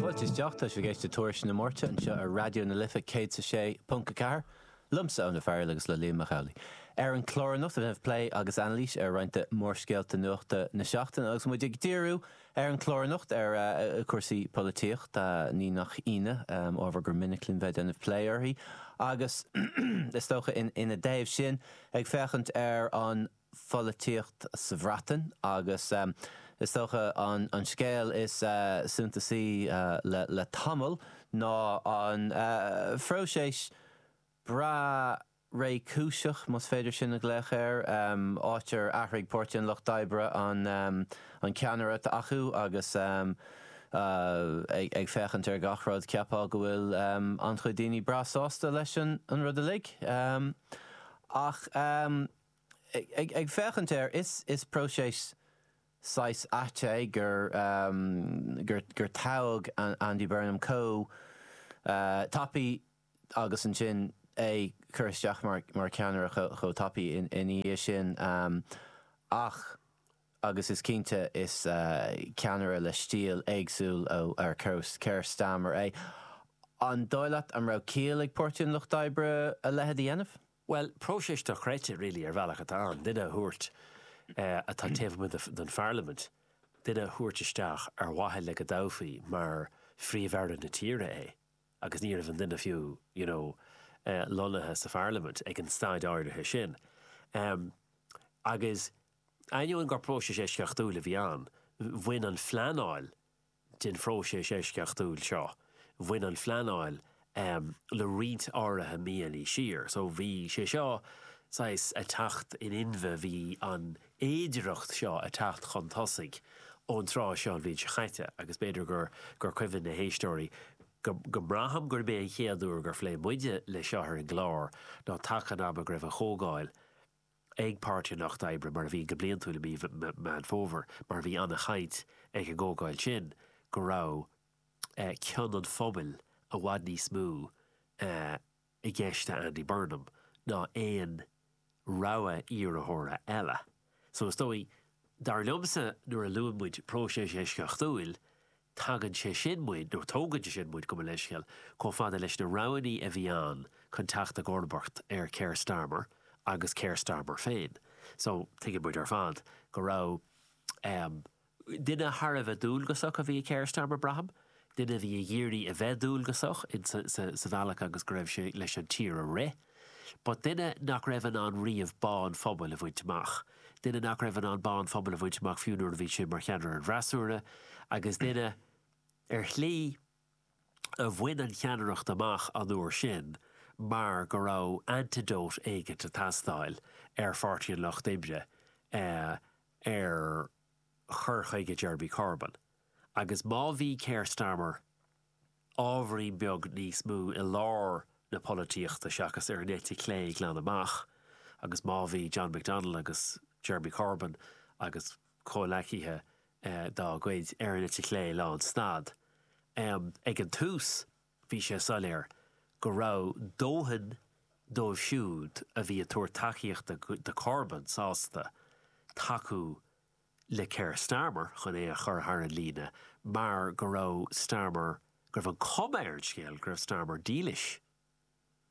Fáilte isteach, tá sibh ag éisteacht le Tuairisc na Máirte anseo ar Raidió na Life 106.4, liomsa Eoin Ó Fearghail agus le Liam Mac Amhlaigh. Ar an chlár anocht beidh plé agus anailís ar roinnt de mhórscéalta nuachta na seachtaine agus muid ag díriú ar an chlár anocht ar chúrsaí polaitíochta, ní nach ionadh, ábhar gur minic linn bheith ag déanamh plé uirthi agus is dócha ina dtaobh sin ag féachaint ar an pholaitíocht sa Bhreatain agus is dócha an scéal is suntasaí le tamall ná an phróiseas breá réchúiseach, más féidir sin a ghlaoch air, áit ar athraigh Páirtí an Lucht Oibre an ceannaire atá acu agus ag féachaint ar gach rud cheapfá go bhfuil an-chuid daoine breá sásta leis an rud uilig ach. Ag féachaint air, is próiseas saghas ait é gur gur toghadh Andy Burnham chomh tapaidh agus ansin é cur isteach mar cheannaire chomh tapaidh ina dhiaidh sin ach, agus is cinnte, is ceannaire le stíl éagsúil ar Keir Starmer é. An dóigh leat an raibh ciall ag Páirtí an Lucht Oibre a leithéid a dhéanamh? Bhuel, próiseas dochreidte really ar bhealach atá ann, duine a thabhairt atá taobh amuigh den pharlaimint, duine a thabhairt isteach ar mhaithe le go dtoghfaí mar Phríomh-Aire na tíre é agus ní raibh an duine fiú you know lonnaithe sa pharlaimint ag an staid áirithe sin. Agus ainneoin gur próiseas eisceachtúil a bhí ann, bhain an phleanáil, den phróiseas eisceachtúil seo, bhain an phleanáil le roinnt áirithe míonna siar. So bhí sé seo saghas ag teacht in inmhe, bhí an fhéidearthacht seo ag teacht chun tosaigh ón tráth seo an bhliain seo caite agus b'fhéidir gur cuimhin leis na héisteoirí go mbraithim gurb é an chéad uair gur phléigh muide leis seo ar an gclár ná taca an ama go raibh an chomhdháil ag Páirtí an Lucht Oibre, mar a bhíonn go bliantúil i mí Mheán Fómhair, mar bhí an-chaint ag an gcomhdháil sin go raibh cion an phobail i bhfad níos mó i gceist le Andy Burnham ná aon rogha iarrthóra eile. So is dóigh, dar liomsa, nuair a luann muid próiseas eisceachtúil, Tagann sé sin muid, nó tógann sé sin muid, gabh mo leithscéal, chomh fada leis na roghanna a bhí ann chun teacht i gcomharbacht ar Keir Starmer agus Keir Starmer féin. So, tuigeann muid ar fad go raibh ehm, duine thar a bheith dualgasach a bhí i Keir Starmer, braithim, duine a bhí ag iarraidh a bheith dualgasach insa bhealach agus go raibh sé leis an tír a rith. Ba duine nach raibh in ann riamh bá an phobail a bhaint amach, duine nach raibh in ann bá an phobail a bhaint amach fiú nuair a bhí sé mar cheannaire an fhreasúra, agus duine, ar shlí, a bhain an cheannaireacht amach an uair sin mar go raibh antidote éigin ag teastáil ar Pháirtí an Lucht Oibre, ar chur chuige Jeremy Corbyn. Agus má bhí Keir Starmer. ábhairín beag níos mó i lár na polaitíochta seachas ar an eite chlé glan amach agus má bhí John McDonnell agus Jeremy Corbyn agus comhleacaithe dá gcuid ar an eite chlé lán stad ag an tús bhí sé soiléir go raibh dóthain dóibh siúd a bhí ag tabhairt tacaíochta do Corbyn sásta tacú le Keir Starmer chun é a chur thar an líne mar go raibh Starmer, go raibh an cuma ar an scéal go raibh Starmer dílis,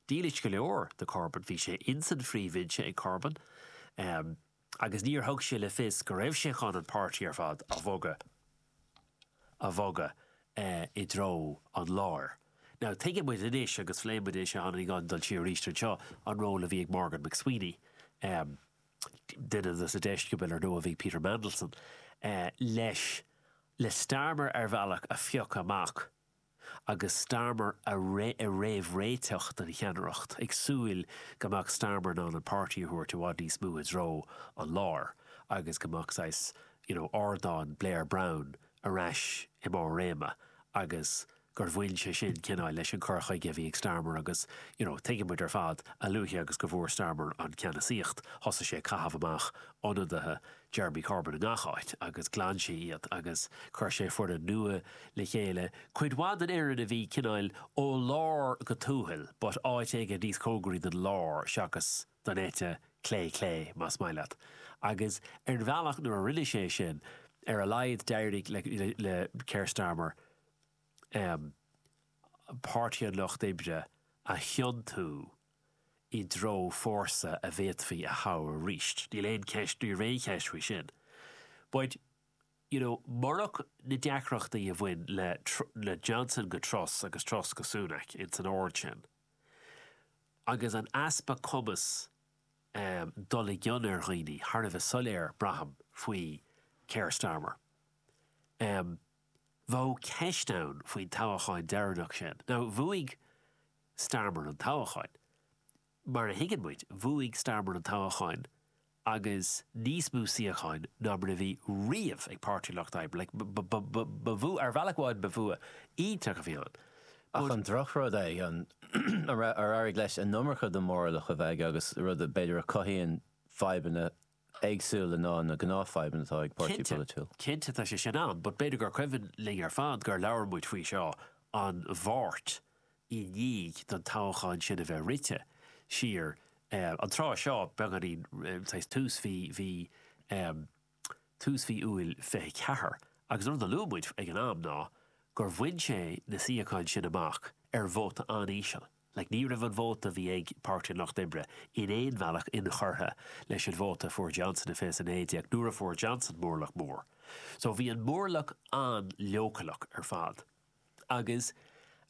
dílis go leor do Corbyn. Bhí sé ins an phríomhbhinse ag Corbyn agus níor thug sé le fios go raibh sé chun an páirtí ar fad a bhogadh, a bhogadh i dtreo an láir. Now tuigeann muid anois agus phléigh muid anois, a tháinig an dul siar arís anseo, an ról a bhí ag Morgan McSweeney. duine dos na deisceabail ar ndóigh a bhí ag Peter Mandelson leis, le Starmer ar bhealach a phiocadh amach agus Starmer a réamhréiteach don cheannaireacht, ag súil go mbeadh Starmer in ann an páirtí a thabhairt i bhfad níos mó i dtreo an láir agus go mbeadh saghas, you know, ardán Blair-Brown ar ais i mbarr réime agus gur bhain sé sin cineál leis an cur chuige a bhí ag Starmer agus you know tuigeann muid ar fad, a luaithe agus go bhfuair Starmer an ceannasaíocht thosaigh sé ag caitheamh amach ionadaithe Jeremy Corbyn i ngach áit agus ghlan sé iad agus chuir sé foireann nua le chéile, cuid mhaith den fhoireann a bhí cineál ó lár go tuathal but áit éigin níos cóngaraí don lár seachas don eite chlé, clé más maith leat, agus ar an bhealach nuair a rinne sé sin ar a laghad d'éirigh le Keir Starmer. Páirtí an Lucht Oibre a thiontú i dtreo fórsa a bhféadfaí a thoghadh arís. Níl aon cheist, ní raibh aon cheist faoi sin. But, you know, murach na deacrachtaí a bhain le Johnson go Truss agus Truss go Sunak, ins an ord sin, agus an easpa cumas dul i gcion ar dhaoine, thar a bheith soiléir, braithim, faoi Keir Starmer. bheadh ceist ann faoin toghachán deireanach sin, nó ar bhuaigh Starmer an toghachán. Mar a thuigeann muid, bhuaigh Starmer an toghachán agus níos mó suíocháin ná mar a bhí riamh ag Páirtí Lucht Oibre. Like, ba, ba, ba, ba bhua, ar bhealach amháin ba bhua iontach a bhí ann, Ach but. an drochrud é ná ar éirigh leis an iomarca de mhórlach a bheith aige agus rud é b'fhéidir a cothaíonn fadhbanna éagsúla ná na gnáthfadhbanna atá ag páirtí Cinnte, polaitiúil. cinnte tá sé sin amhlaidh, but b'fhéidir gur cuimhin linn ar fad gur labhair muid faoi seo an Mháirt i ndiaidh an toghchán sin a bheith rite siar. An tráth seo, beagáinín tar éis tús mhí, mhí, tús mhí Iúil 24, agus an rud a luaigh muid ag an am ná gur bhain sé na suíocháin sin amach ar vóta an-íseal. like ní raibh an vóta a bhí ag Páirtí an Lucht Oibre in aon bhealach inchurtha leis an vóta a fuair Johnson i fiche 19 nuair a fuair Johnson mórlach mór. So bhí an mórlach an-leochaileach ar fad. Agus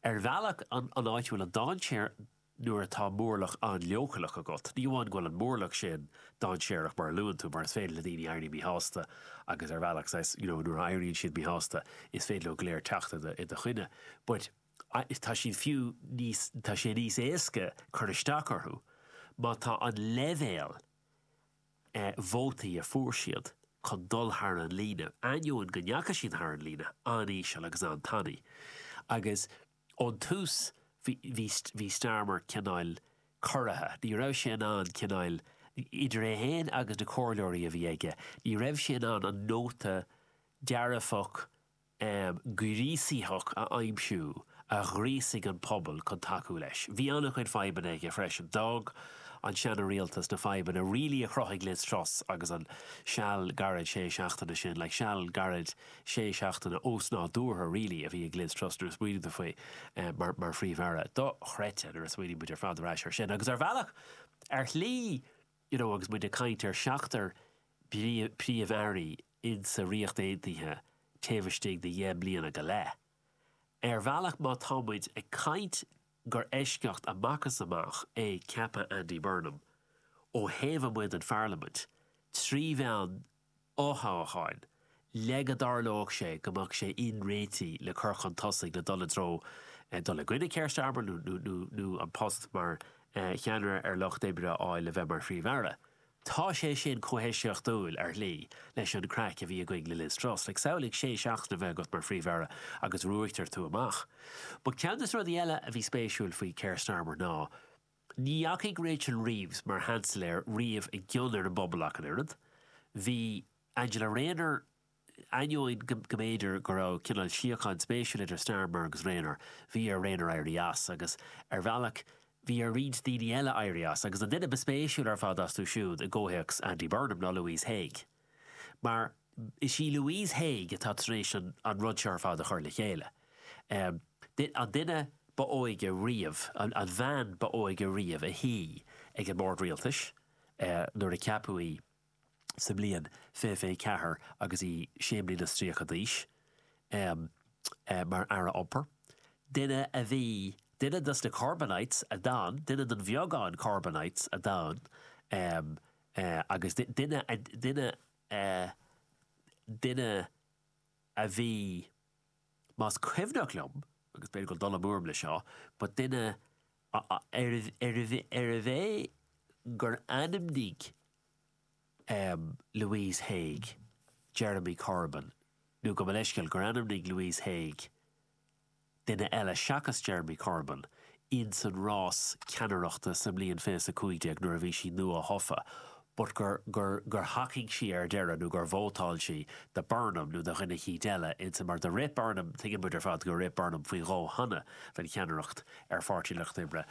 ar bhealach an áit a bhfuil an dainséar nuair atá mórlach an-leochaileach agat, ní amháin go bhfuil an mórlach sin dainséarach mar a luann tú mar is féidir le daoine éirí míshásta agus ar bhealach saghas, you know, nuair a éiríonn siad míshásta is féidir leo go léir teacht i do choinne but. tá siad fiú níos, tá sé níos éasca cur isteach orthu má tá an leibhéal vótaí a fuair siad chun dul thar an líne, ainneoin go ndeachaigh siad thar an líne, an-íseal agus an-tanaí. Agus ón tús bhí Starmer cineál corraithe, ní raibh sé in ann cineál, idir é féin agus na comhairleoirí a bhí aige, ní raibh sé in ann an nóta dearfach, am gríosaitheach a aimsiú a ghríosaigh an pobal chun tacú leis. Bhí an-chuid fadhbanna aige freisin. D'fhág an seana rialtas na fadhbanna really a chruthaigh Liz Truss agus an seal gairid sé seachtaine sin like seal gairid sé seachtaine ósnádúrtha really a bhí ag Liz Truss nuair a smaoiníonn tú faoi mar mar Phríomh-Aire. Dochreidte nuair a smaoiníonn muid ar fad ar ais ar sin agus ar bhealach ar shlí you know agus muid ag caint ar seachtar príomh-airí insa Ríocht Aontaithe taobh istigh de dheich mbliana go leith. Ar bhealach má tá muid ag caint gur eisceacht amach is amach é ceapadh Andy Burnham ó thaobh amuigh den Pharlaimint, trí mheán fothoghcháin, le go dtarlódh sé go mbeadh sé in ann réiteach le cur chun tosaigh le dul i dtreo dul i gcoinne Keir Starmer nó an post mar cheannaire ar an Lucht Oibre a fháil le bheith mar Phríomh-Aire. Tá sé sin chomh heisceachtúil, ar shlí, leis an craic a bhí againn le Liz Truss. Like, samhlaigh sé seachtaine a bheith agat mar Phríomh-Aire agus ruaigtear tú amach. But ceann de na rudaí eile a bhí spéisiúil faoi Keir Starmer ná, Ní dheachaigh Rachel Reeves mar Sheansailéir riamh i gcion ar an bpobal ach an oiread. Bhí Angela Rayner, ainneoin go mb'fhéidir go raibh cineál síocháin spéisiúil idir Starmer agus Rayner, bhí ar Rayner éirí as, agus ar bhealach bhí ar roinnt daoine eile éirí as, agus an duine ba spéisiúil ar fad astu siúd i gcomhthéacs Andy Burnham ná Louise Haigh. mar is í Louise Haigh atá tar éis an rud seo ar fad a chur le chéile, an duine ba óige riamh, an bhean ba óige riamh a shuigh ag an mbord rialtais nuair a ceapadh í sa mbliain fiche fiche ceathair agus í sé mbliana 's tríocha d'aois, mar Aire Iompair, duine a bhí, duine dos na Corbynites a d'fhan, duine den bheagán Corbynites a d'fhan agus duine a duine duine a bhí más cuimhneach liom, agus b'fhéidir go bhfuil dul amú orm le seo, but duine ab ab ea bhí gur ainmnigh Louise Haigh Jeremy Corbyn nó gabh mo leithscéal gur ainmnigh Louise Haigh duine eile seachas Jeremy Corbyn, ins an rás ceannaireachta sa mbliain fiche is a cúig déag nuair a bhí sí nua-thofa, but gur, gur, gur thacaigh sí ar deireadh nó gur vótáil sí do Burnham nó do dhuine eicínt eile ins an, mar do rith Burnham, tuigeann muid ar fad gur rith Burnham faoi dhó cheana don cheannaireacht ar Pháirtí an Lucht Oibre.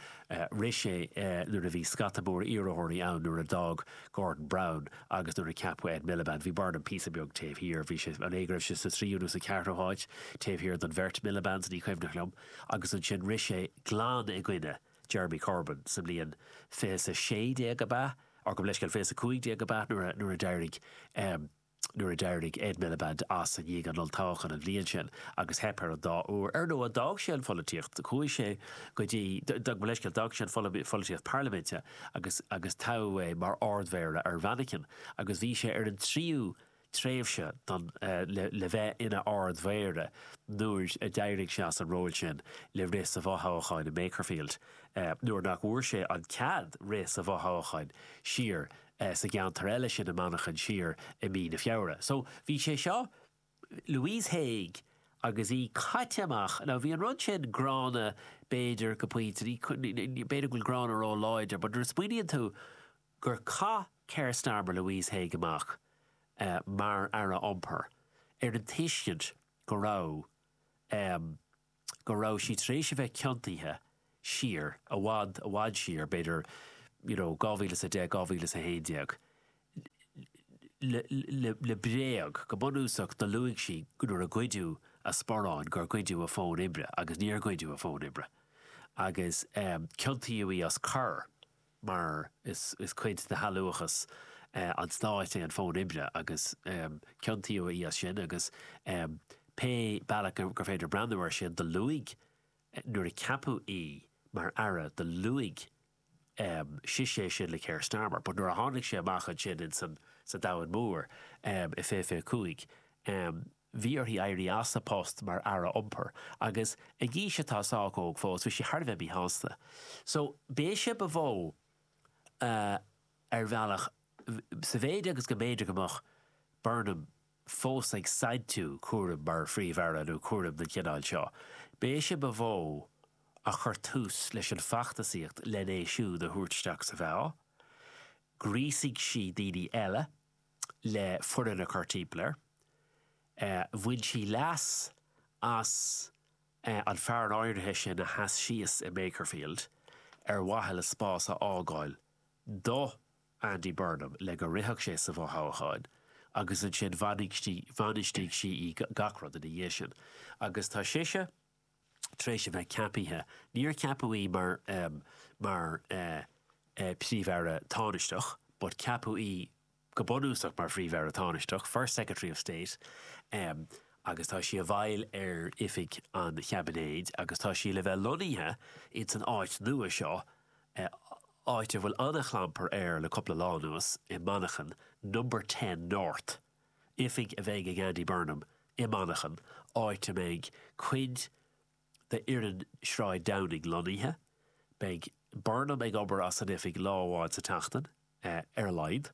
Rith sé nuair a bhí scata mór iarrthóirí ann nuair a d'fhág Gordon Brown agus nuair a ceapadh Ed Miliband. Bhí Burnham píosa beag taobh thiar, bhí sé, an é go raibh sé sa tríú nó sa cheathrú háit, taobh thiar don bheirt Milibands, ní cuimhneach liom, agus ansin rith sé glan i gcoinne Jeremy Corbyn sa mbliain fiche is a sé déag ab ea, gabh mo leithscéal fiche is a cúig déag ab ea nuair a d'éirigh. Nuair a d'éirigh Ed Miliband as i ndiaidh an olltoghcháin an bhliain sin agus theip air an dá uair ar ndóigh, d'fhág sé an pholaitíocht. Chuaigh sé go dtí, d'fhág, mo leithscéal, d'fhág sé an pholaitíocht parlaiminte agus agus toghadh é mar Ard-Mhéara ar Mhanchain agus bhí sé ar an tríú tréimhse don le le bheith ina Ard-Mhéara nuair a d'éirigh sé as an ról sin le rith sa bhfothoghchán i Makerfield nuair nach bhfuair sé an cead rith sa bhfothoghchán siar eh, sa gceantar eile sin i Manchain siar i mí na Feabhra. So, bhí sé seo, Louise Haigh agus í caite amach, now bhí an rud sin gránna b'fhéidir go pointe, ní, b'fhéidir go bhfuil gránna ró láidir, but nuair a smaoiníonn tú gur chaith Keir Starmer Louise Haigh amach eh, mar Aire Iompair ar an tuiscint go raibh em, go raibh sí tar éis a bheith ciontaithe siar, i bhfad, i bhfad siar, b'fhéidir, you know, dhá mhíle is a deich, dhá mhíle is a haon déag, le, le, le bréag, go bunúsach, do luaigh sí nuair a goideadh a sparán gur goideadh a fón oibre agus níor goideadh a fón oibre agus, eh, ciontaíodh í as coir. mar is cuid de shealúchas an stáit é an fón oibre agus ciontaíodh í as sin agus pé bealach gur féidir breathnú ar sin do luaigh nuair a ceapadh í mar aire do luaigh sise é sin le Keir Starmer but nuair a tháinig sé amach ansin insan sa domhan mór i fiche fiche cúig Bhí uirthi éirí as a post mar Aire Iompair agus ag aois atá sách óg fós bhí sí thar a bheith míshásta. So b'í sise ba mhó a, ar bhealach, sa mhéid agus go mb'fhéidir go mbeadh Burnham fós ag saintiú cúraim mar Phríomh-Aire nó cúraim den chineál seo, b'í sise ba mhó a chur tús leis an feachtasaíocht lena é siúd a thabhairt isteach sa mheá. Ghríosaigh sí daoine eile. le foireann a chur timpeall air. Bhain sí leas as an fear in áirithe sin a sheas síos i Makerfield ar mhaithe le spás a fhágáil do Andy Burnham le go rithfeadh sé sa bhfothoghchán agus ansin bhainistigh sí í gach rud ina dhiaidh sin agus tá sise tar éis a bheith ceapaithe, níor ceapadh í mar mar Príomh-Aire Tánaisteach but ceapadh í go bunúsach mar Phríomh-Aire Tánaisteach, First Secretary of State, agus tá sí i bhfeighil ar oifig an chaibinéid agus tá sí le bheith lonnaithe ins an áit nua seo, áit a bhfuil an-chlampar air le cupla lá anuas, i Manchain, Number Ten North. Oifig a bheidh ag Andy Burnham i Manchain, áit a mbeidh cuid d'fhoireann Shráid Downing lonnaithe. Beidh Burnham ag obair as an oifig lá amháin sa tseachtain, ar a laghad,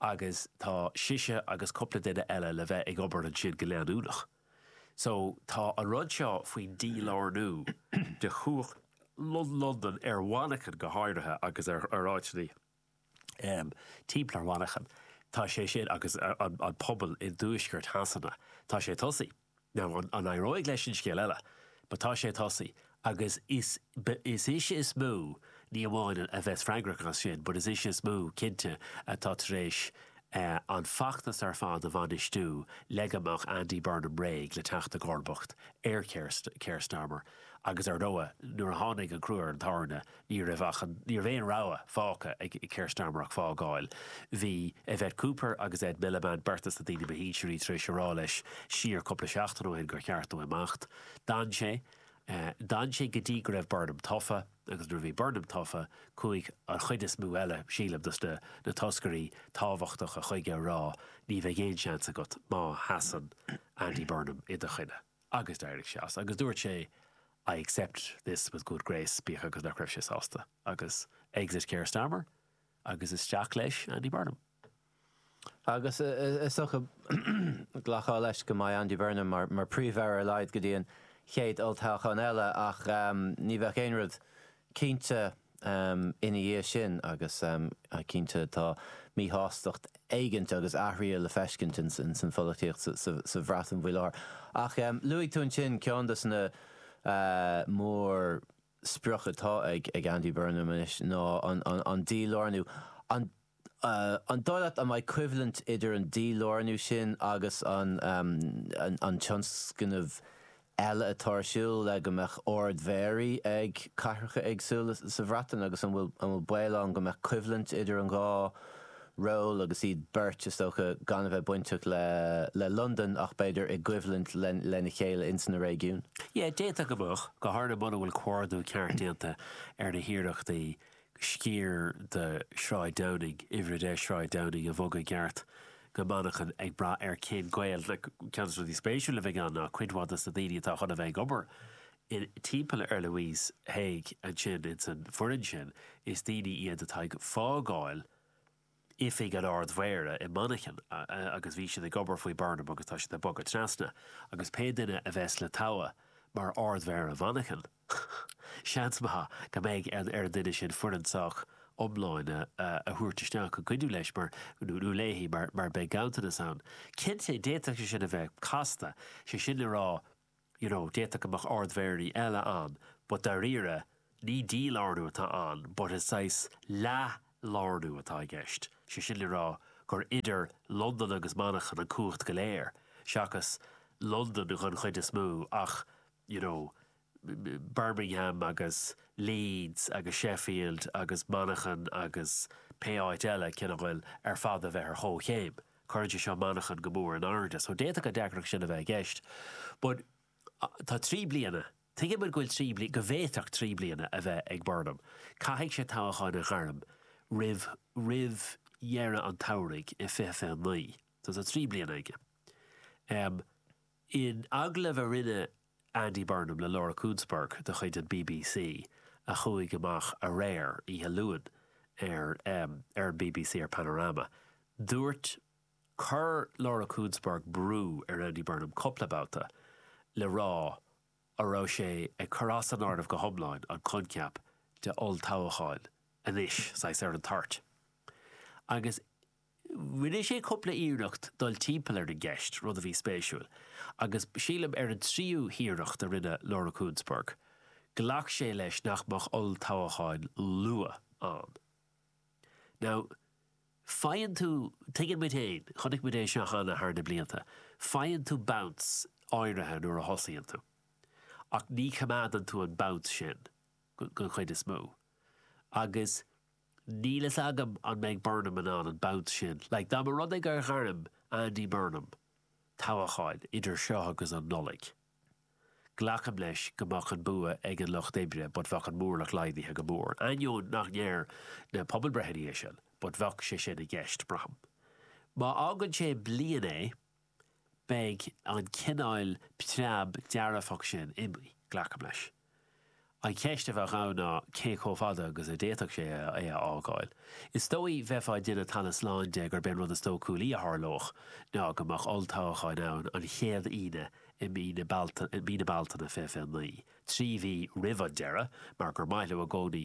agus tá sise agus cúpla duine eile le bheith ag obair ansin go leanúnach. So, tá an rud seo faoin dílárnú de chumhacht Londan, ar Mhanchain go háirithe agus ar áiteanna timpeall ar Mhanchain, tá sé sin agus an pobal i dtuaisceart Shasana, tá sé tosaithe. Now, an éireoidh leis sin scéal eile, but tá sé tosaithe agus is ise is mó, ní amháin a bheas freagrach as sin, but is ise is mó cinnte atá tar éis an feachtas ar fad a bhainistiú le go mbeadh Andy Burnham réidh le teacht i gcomharbacht ar Keir Starmer agus ar ndóigh nuair a tháinig an crua ar an tairne, Ní raibh ach an, ní raibh aon rogha fágtha ag Keir Starmer ach fágáil. Bhí Yvette Cooper agus Ed Miliband beirt as na daoine ba shinsearaí tar éis a rá leis siar cúpla seachtain ó shin gur cheart dó imeacht. D'fhan sé. D'fhan sé go dtí go raibh Burnham tofa agus nuair a bhí Burnham tofa chuaigh an chuid is mó eile, sílim, dos na toscairí tábhachtacha chuige a rá ní bheidh aon seans agat má sheasann Andy Burnham i do choinne. Agus d'éirigh sé as agus dúirt sé I accept this with good grace, bíodh agus nach raibh sé sásta. Agus exit Keir Starmer agus isteach leis Andy Burnham. Agus is dócha glactar leis go mbeidh Andy Burnham mar Príomh-Aire ar a laghad go dtí an chéad olltoghchán eile ach ní bheadh aon rud cinnte ina dhiaidh sin agus cinnte tá míshástacht éigint agus athruithe le feiscint ins an pholaitíocht sa Bhreatain faoi láthair. Ach luaigh tú ansin ceann dos na mórspriocanna atá ag Andy Burnham anois ná an dílárnú. An An dóigh leat go mbeidh coimhlint idir an dílárnú sin agus an tionscnamh eile atá ar siúl le go mbeadh ard-mhéaraí ag cathracha éagsúla sa Bhreatain agus an bhfuil baol ann go mbeadh coimhlint idir an dhá ról agus iad beirt is dócha gan a bheith bainteach le Londain ach b'fhéidir i gcoimhlint lena chéile ins na réigiúin? Yeah, d'fhéadfadh go mbeadh, go háirithe muna bhfuil comhordú ceart déanta ar na hiarrachtaí sciar de Shráid Downing, Uimhir 10 Sráid Downing, a bhogadh i gceart go Manchain ag brath ar cén gaol le Ceann dos na rudaí spéisiúla a bheidh ann ná cuid mhaith de na daoine atá chun a bheith ag obair timpeall ar Louise Haigh ansin insan foireann sin is daoine iad atá ag fágáil oifig an Ard-Mhéara i Manchain agus bhí siad ag obair faoi Burnham agus tá siad ag bogadh trasna agus pé duine a bheas le togha mar Ard-Mhéara Mhanchain seans maith go mbeidh ar an duine sin foireann sách iomlán a thabhairt isteach le cuidiú leis mar nó léi mar beidh ganntanas ann. Cinnte, d'fhéadfadh sé sin a bheith casta, sé sin le rá, you know, d'fhéadfadh go mbeadh ardmhéaraí eile ann but dáiríre ní dílárnú atá ann but is saghas leathlárnú atá i gceist, sé sin le rá gur idir Londain agus Manchain an cumhacht go léir seachas Londain don chuid is mó ach you know Birmingham agus Leeds agus Sheffield agus Manchain agus pé áit eile ceann a bhfuil ar fad a bheith ar chomhchéim. Cuirfidh sé seo Manchain go mór in airde so d'fhéadfadh an deacracht sin a bheith i gceist but tá trí bliana, tuigeann muid go bhfuil trí bliana, go bhféadfadh trí bliana a bheith ag Burnham. Caithfidh sé toghchán a ghairm roimh, roimh dheireadh an tsamhraidh i 2029 so tá trí bliana aige. In agallamh a rinneadh Andy Burnham le Laura Kuenssberg de chuid an bbc a chuaigh amach aréir oíche Luain ar ar an bbc ar Panorama. Dúirt Chuir Laura Kuenssberg brú ar Andy Burnham cúpla babhta le rá a raibh sé ag cur as san áireamh go hiomláin an coincheap de olltoghcháin anois saghas ar an toirt agus Rinne sé cúpla iarracht dul timpeall ar an gceist, rud a bhí spéisiúil, agus sílim ar an tríú iarracht a rinne Laura Kuenssberg, ghlac sé leis nach mbeadh olltoghchán luath ann. Now, faigheann tú, tuigeann muid féin, chonaic muid é seo cheana thar na blianta, faigheann tú bounce áirithe nuair a thosaíonn tú, ach ní choimeádann tú an bounce sin den chuid is mó, agus Níl fhios agam an mbeidh Burnham in ann an bounce sin. Like, dá mba rud é gur ghairm Andy Burnham toghchán idir seo agus an Nollaig, glacaim leis go mbeadh an bua ag an Lucht Oibre but bheadh an móramh laghdaithe go mór, ainneoin nach ndeir na pobalbreitheanna é sin, but bheadh sé sin i gceist, braithim. Má fhágann sé bliain é. beidh an cineáil preab dearfach sin imithe, glacaim leis. An cheist a bheadh ann ná cé chomh fada agus a d'fhéadfadh sé é a fhágáil. Is dóigh bheifeá ag déanamh talamh slán de gurb é an rud is dóchúlaí a tharlódh ná go mbeadh olltoghcháin ann an chéad Aoine i mí na Bealtaine 2029. trí mhí roimh an deireadh mar gur maith leo i gcónaí,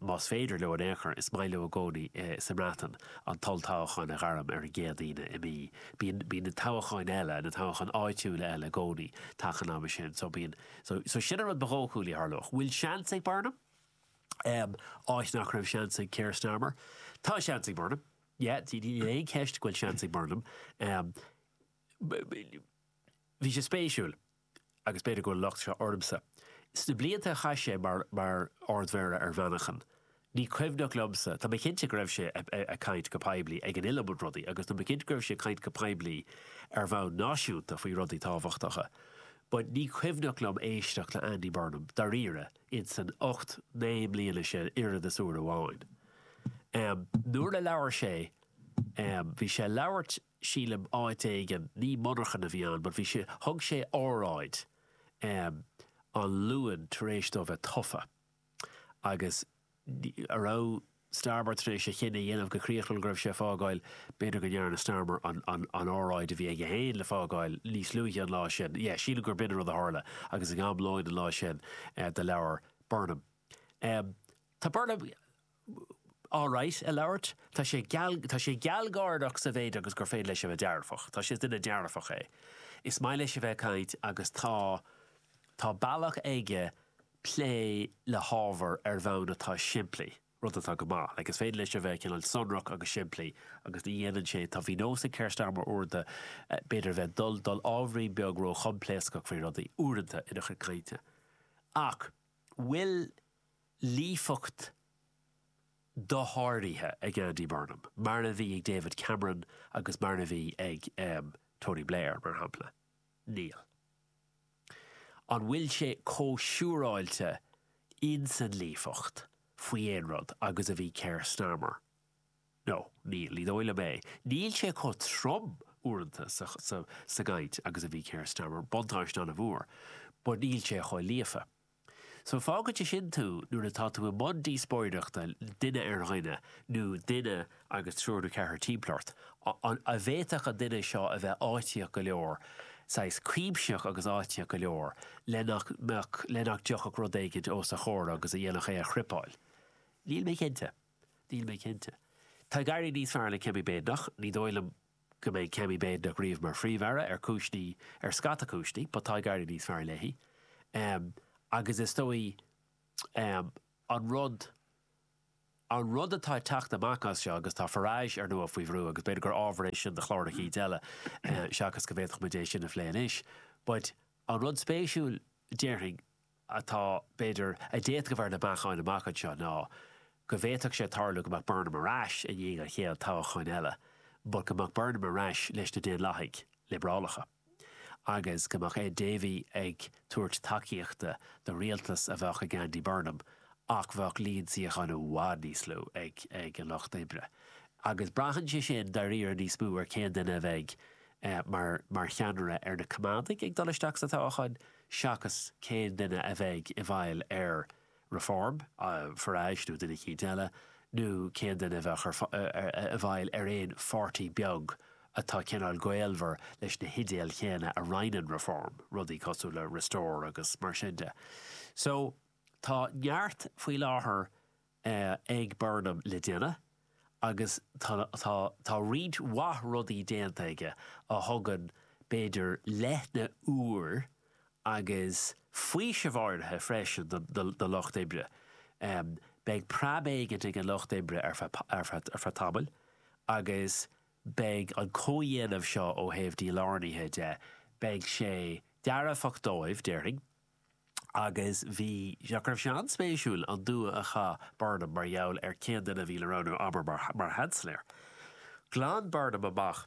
más féidir leo in aon chor, is maith leo i gcónaí sa mBreatain, an t-olltoghchán a ghairm ar an gcéad Aoine i mí B, bíonn, bíonn na toghcháin eile, na toghcháin áitiúla eile i gcónaí taca an ama sin. So bíonn, so, so sin an rud ba dhóchúlaí a tharlódh. Bhfuil seans ag Burnham? Um, áit nach raibh seans ag Keir Starmer. Tá seans ag Burnham. Yeah, níl aon cheist go bhfuil seans ag Burnham. Um, bhí sé spéisiúil. agus b'fhéidir go bhfuil locht seo ormsa, sna blianta a chaith sé mar mar Ard Mhéara ar Mhanchain, ní cuimhneach liomsa, tá mé cinnte go raibh sé ag caint go poiblí ar an iliomad rudaí agus tá mé cinnte go raibh sé ag caint go poiblí ar bhonn náisiúnta faoi rudaí tábhachtacha but ní cuimhneach liom éisteacht le Andy Burnham dáiríre in san ocht, naoi mbliana sin oiread is uair amháin. Nuair a labhair sé bhí sé ag labhairt. sílim, áit éigin, ní monarcha a bhí ann but bhí sé, thug sé óráid ehm an Luan tar éis dó bheith tofa agus a raibh Starmer tar éis a chinneadh a dhéanamh go críochnúil go raibh sé a' fágáil, b'fhéidir go ndearna Starmer an, an, an óráid a bhí aige féin le fágáil níos luaithe an lá sin, yeah, sílim gur b'in an rud a tharla agus ag am lóin an lá sin eh do labhair Burnham, ehm tá Burnham, alright a labhairt. Tá sé geal, tá sé gealgháireach sa mhéid agus gur féidir leis a bheith dearfach. Tá sé, is duine dearfach é. Is maith leis a bheith ag caint agus tá, tá bealach aige plé le hábhar ar bhonn atá simplí, rud atá go maith. Like is féidir leis a bheith cineál sonrach agus simplí agus ní dhéanann sé, tá, bhí nós ag Keir Starmer uaireanta b'fhéidir a bheith, dul, dul ábhairín beag ró-choimpléascach faoi rudaí, uaireanta ina chuid cainte. Ach an bhfuil. líofacht dosháraithe ag Andy Burnham, mar a bhí ag David Cameron agus mar a bhí ag Tony Blair, mar shampla. Níl. An bhfuil sé chomh siúráilte in san líofacht faoi aon rud agus a bhí Keir Starmer? No, níl, ní dóigh liom é. Em, níl sé chomh trom uaireanta sa gcaint agus a bhí Keir Starmer, buntáiste an-mhór, but níl sé chomh líofa. So fágfaidh sé sin tú nuair atá tú i mbun díospóireachta duine ar dhuine, nó duine agus triúr nó ceathrar timpeall ort, an bhféadfadh an duine seo a bheith áitíoch go leor, saghas cuimsitheach agus áitíoch go leor le nach mbeadh, le nach dtiocfadh rud éigin os a chomhair agus a dhéanfadh é a chripeáil? Níl mé cinnte. Níl mé cinnte. Tá ag éirí níos fearr le Kemi Badenoch, ní dóigh liom. go mbeidh Kemi Badenoch riamh mar Phríomh-Aire ar cúiseanna, ar scata cúiseanna, but tá ag éirí níos fearr léi. Agus is dóigh, an rud, an rud atá ag teacht amach as seo, agus tá Farage ar ndóigh faoi bhrú agus b'fhéidir gur ábhar é sin do chlár eicínt eile seachas go bhféadfadh muid é sin a phlé anois, but an rud spéisiúil déarfainn, atá, b'fhéidir, a d'fhéadfadh a bheith ar na bacáin amach anseo ná go bhféadfadh sé tarlú go mbeadh Burnham ar ais i ndiaidh an chéad toghcháin eile but go mbeadh Burnham ar ais leis na Daonlathaigh Liobrálacha agus go mbeadh Ed Davey ag tabhairt tacaíochta do rialtas a bheadh ag Andy Burnham ach bheadh líon suíochán i bhfad níos lú ag an Lucht Oibre. Agus braitheann sé sin dáiríre níos mó ar cén duine a bheidh mar cheannaire ar na Coimeádaigh ag dul isteach sa toghchán. seachas cén duine a bheidh i bhfeighil ar Reform, Farage nó duine eicínt eile, nó cén duine a bheadh i bhfeighil ar aon pháirtí beag atá cineál gaolmhar leis na hidéil chéanna a roinneann Reform, rudaí cosúil le Restore agus mar sin de. So, tá neart faoi láthair ag Burnham le déanamh agus tá, tá roinnt mhaith rudaí déanta aige a thugann b'fhéidir leoithne úr agus faoiseamh áirithe freisin don lucht oibre. Beidh preab éigin ag an lucht oibre ar feadh tamaill agus beidh an comhdhéanamh seo ó thaobh dílárnaithe de, beidh sé dearfach dóibh, déarfainn. agus bhí, nach raibh sé an-spéisiúil an dua a chaith Burnham mar gheall ar cén duine a bhí le roghnú abair mar sheansailéir. Ghlan Burnham amach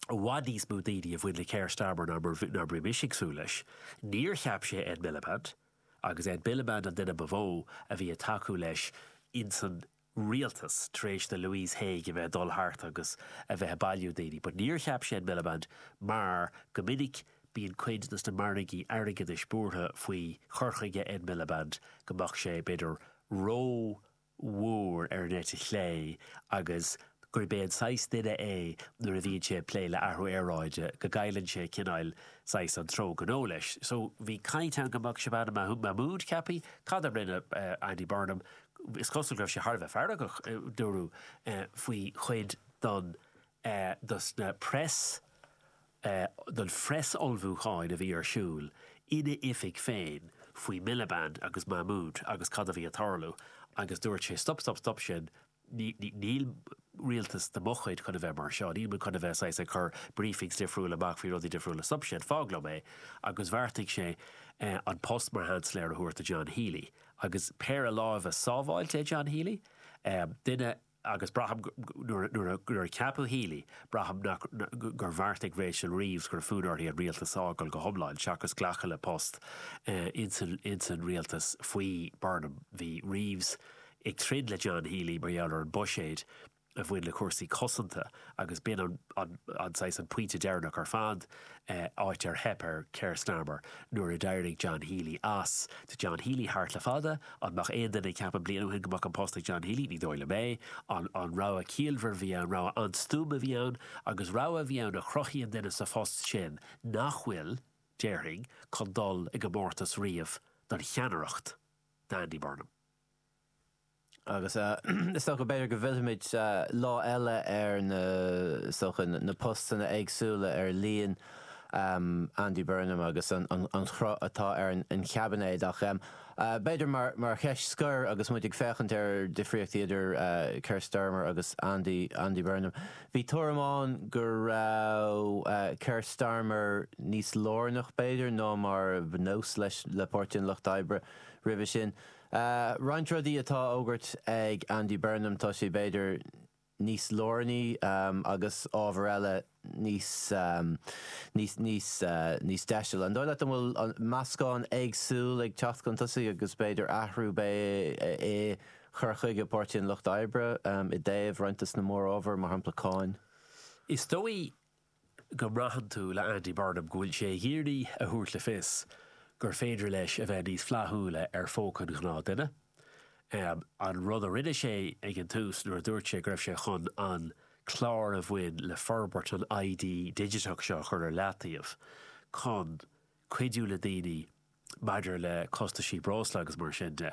i bhfad níos mó daoine a bhain le Keir Starmer ná mar a bhí mise ag súil leis. Níor cheap sé Ed Miliband, agus Ed Miliband an duine ba mhó a bhí ag tacú leis insan rialtas tar éis do Louise Haigh a bheith ag dul thart agus a bheith ag bailiú daoine, but níor cheap sé Ed Miliband mar go minic bíonn cuid dos na margaí airgeadais buartha faoi chur chuige Ed Miliband go mbeadh sé, b'fhéidir, ró mhór ar an eite chlé agus gurb é an saghas duine é nuair a bhíonn sé ag plé le athrú aeráide go gcailleann sé cineáil, saghas an treo gnó leis. So bhí caint ann go mbeadh Shabana Mahmood ceapaithe, cad a rinne Andy Burnham, Is cosúil go raibh sé thar a bheith feargach, dúradh, faoi chuid den, de na preas, den phreas-ullmhúcháin a bhí ar siúl ina oifig féin faoi Miliband agus Mahmood agus cad a bhí ag tarlú agus dúirt sé, stop, stop, stop sin, níl rialtas de mo chuid chun a bheith mar seo, níl muid chun a bheith saghas ag cur briefings difriúla amach faoi rudaí difriúla, stop sin, fág liom é, agus bheartaigh sé an post mar Sheansailéir a thabhairt do John Healy. agus péire láimhe sábháilte é John Healy, duine agus braithim nuair a ceapadh Healy, braithim nach gur bheartaigh Rachel Reeves go raibh fonn uirthi an rialtas a fhágáil go hiomlán seachas glacadh le post ins an rialtas faoi Burnham. Bhí Reeves ag troid le John Healy mar gheall ar an buiséad a bhain le cúrsaí cosanta agus b'in é an saghas an pointe deireanach ar fad, áit ar theip ar Keir Starmer nuair a d'éirigh John Healy as. Tá John Healy thart le fada. An mbeadh aon duine ag ceapadh bliain ó shin go mbeadh an post ag John Healy? Ní dóigh liom é. Rogha ciallmhar a bhí ann, rogha an-stuama a bhí ann agus rogha a bhí ann a chruthaíonn duine sa phost sin nach bhfuil, déarfainn, chun dul i gcomórtas riamh don cheannaireacht d'Andy Burnham. agus is dócha go b'fhéidir go bhfillfimid lá eile ar na, is dócha, na postanna éagsúla ar líon Andy Burnham agus an chruth atá ar an gcaibinéad. Ach b'fhéidir mar cheist scoir agus muid ag féachaint ar dhifríochtaí idir Keir Starmer agus Andy, Andy Burnham, bhí tuairim ann go raibh Keir Starmer níos lárnach b'fhéidir ná mar ba nós leis, le Páirtí an Lucht Oibre roimhe sin. Roinnt rudaí atá á fhógairt ag Andy Burnham, tá sé b'fhéidir níos lárnaí agus ábhar eile níos, níos, níos deisile. An dóigh leat an bhfuil meascán éagsúil ag teacht chun tosaigh agus b'fhéidir athrú beidh i chur chuige Páirtí an Lucht Oibre i dtaobh roinnt dos na mórábhair, mar shampla cáin? Is dóigh go mbraitheann tú le Andy Burnham go bhfuil sé ag iarraidh a thabhairt le fios gur féidir leis a bheith níos flaithiúla ar phóca an ghnáth duine. An rud a rinne sé ag an tús nuair a dúirt sé go raibh sé chun an clár a bhain le forbairt an ID digiteach seo a chur ar leataobh chun cuidiú le daoine maidir le costaisí breosla agus mar sin de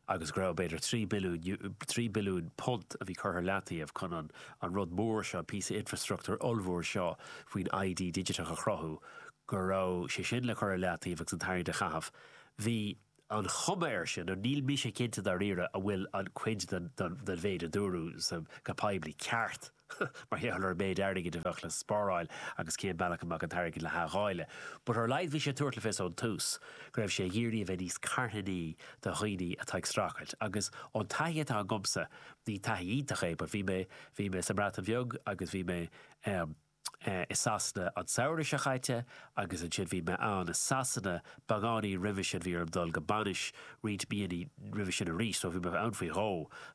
agus go raibh b'fhéidir trí billiún eu, trí billiún punt a bhí curtha i leataobh chun an an rud mór seo, an píosa infreastruchtúir ollmhór seo faoin ID digiteach a chruthú, go raibh sé sin le cur i leataobh agus an t-airgead a chaitheamh. Bhí. an chuma air sin, nó níl mise cinnte dáiríre an bhfuil an chuid den mhéid a dúradh go poiblí ceart mar gheall ar an méid airgid a bheadh le spáráil agus cén bealach a mbeadh an t-airgead le hathdháileadh. But ar laghad bhí sé ag tabhairt le fios ón tús go raibh sé ag iarraidh a bheith níos carthanaí do dhaoine atá ag streachailt agus ón taithí atá agamsa, ní taithí iontach é but bhí mé, bhí mé sa mBreatain Bheag agus bhí mé eh. i Sasana an samhradh seo chaite agus ansin bhí mé ann i Sasana beagáinín roimhe sin bhí orm dul go bainis roinnt míonna roimhe sin arís so bhí mé ann faoi dhó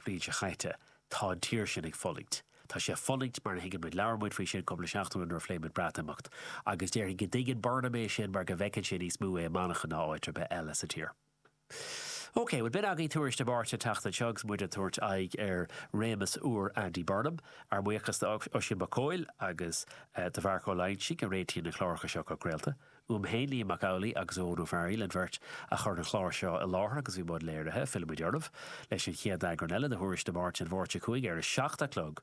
bhliain seo chaite. Tá an tír sin ag fulaingt. Tá sé ag fulaingt mar a thuigeann muid labhair muid faoi sin cúpla seachtain nuair a phléigh muid Breatimeacht agus déarfainn go dtuigeann Burnham é sin mar go bhfeiceann sé níos mó é i Manchain ná áit ar bith eile sa tír. OK, bhuel b'in agaibh tuairisc na Máirte an tseachtain seo agus muid ag tabhairt aghaidh ar réimeas úr Andy Burnham. Ár mbuíochas d'Oisín Mac Cóil agus do Mharc Ó Loingsigh a réitíonn na cláracha seo go craolta. Uaim féin, Liam Mac Amhlaigh agus Eoghan Ó Fearghaíl an bheirt a chuir an clár seo i láthair agus bhí i mbun léirithe. Fillfimid oraibh leis an chéad eagrán eile de thuairisc na Máirte an Mháirt seo chugainn ar a seacht a chlog.